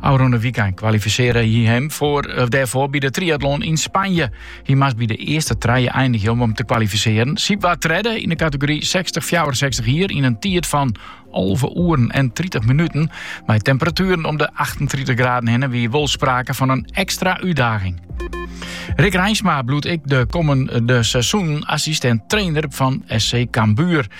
Ofrûne wykein kwalifisearre hy him foar, of dêrfoar by de triatlon yn Spanje. Hy moast by de earste trije einigje om him te kwalifisearren. Siep waard tredde yn de kategory sechstich, fjouwerensechstich jier yn in tiid fan alve oeren en tritich minuten. Mei temperatueren om de achtentritich graden hinne wie wol sprake fan in ekstra útdaging. Rik Reinsma bliuwt ek de kommende seizoenen assistent-trainer fan SC Cambuur.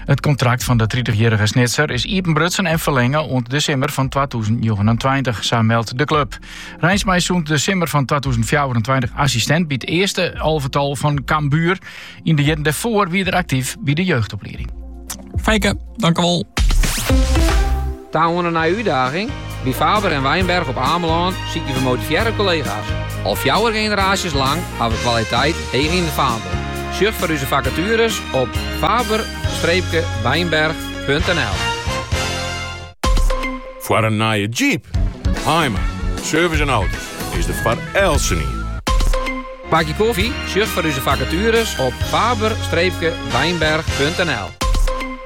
It kontrakt fan de 30-jarrige Snitser is iepenbrutsen en ferlinge oant de simmer fan 2029, sa meldt de club. Reinsma is sûnt de simmer fan 2024 assistent by it earste alvetal fan Cambuur. Yn de jierren dêrfoar wie er actief by de jeugdoplieding. Feike, dankewol. Ta oan in nije útdaging? By Faber en Wijnberg op Amelân sykje we motivearre kollega's. Al fjouwer generaasjes lang ha we kwaliteit heech yn it faandel. Sjoch foar ús fakatueres op faber-wijnberg.nl. Foar in nije job? Hymer Service en Auto's is der foar eltsenien. Bakje koffie? Sjoch foar ús fakatueres op faber-wijnberg.nl.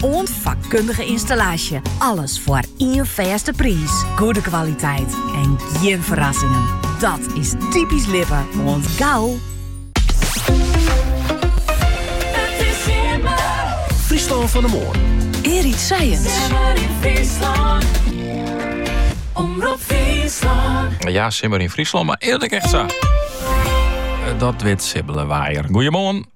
Oant fakkundige ynstallaasje. Alles foar ien fêste priis. Goede kwaliteit en gjin ferrassingen. Dat is typysk Lippe. Oant gau. Fryslân fan 'e moarn. Erik Science. Simmer yn Fryslân. Omrop Fryslân. Ja, simmer yn Fryslân, mar wurdt it ek echt sa. Eh, dat wit Sibbele Waaier. Goeiemoarn.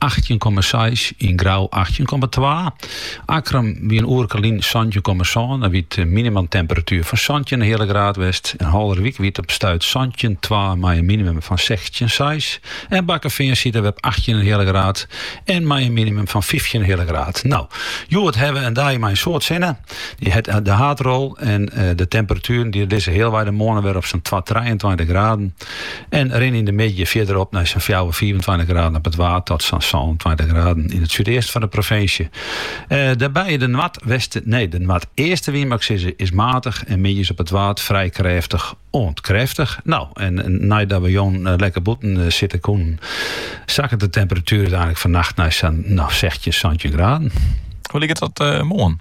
achttjin komma seis yn Grou achttjin komma twa. Akkrum wie in oerke lyn santjin komma sân dêr wie in minimumtemperatuer fan santjin in heale graad west. Yn Haulerwyk wie it op stuit santjin komma twa mei in minimum fan sechstjin komma seis en Bakkefean siet der op achttjin in heale graad en mei in minimum fan fyftjin in heale graad. No hjoed hawwe we in dei mei in soad sinne. Dy hat de haadrol en de temperatueren dy lizze healwei de moarn wer op sa'n twa trijeentweintich graden. En rin yn de middei fierder op nei sa'n fjouwer, fiifentweintich graden op it Waad tot sa'n sânentweintich graden yn it súdeasten fan de provinsje. Eh, dêrby de noardwesten, nee, de noardeaste wyn moat ik sizze is matich en middeis op it Waad frij krêftich oant krêftich. No, en neidat we jûn eh, lekker bûten eh, sitte koenen, sakket de temperatuer úteinlik fannacht nei sa'n, no, sechstjin, santjin graden. Hoe liket dat uh, moarn?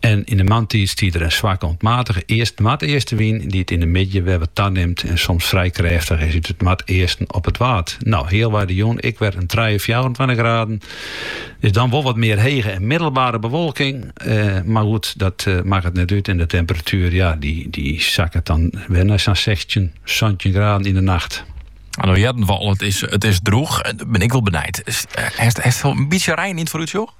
En yn 'e moarntiid stiet der in swakke oant matige east-noardeastenwyn, dy't yn 'e middei wer wat tanimt en soms frij krêftich is út it noardeasten op it Waad. No, healwei de jûn ek wer in trije, fjouwerentweintich graden. Is dan wol wat mear hege en middelbare bewolking, mar goed, dat makket net út en de temperatuer, ja, dy sakket dan wer nei sa'n sechstjin, santjin graden yn 'e nacht. No hearden we al, it is droech. Bin ik wol benijd, hast in bytsje rein yn it foarútsjoch?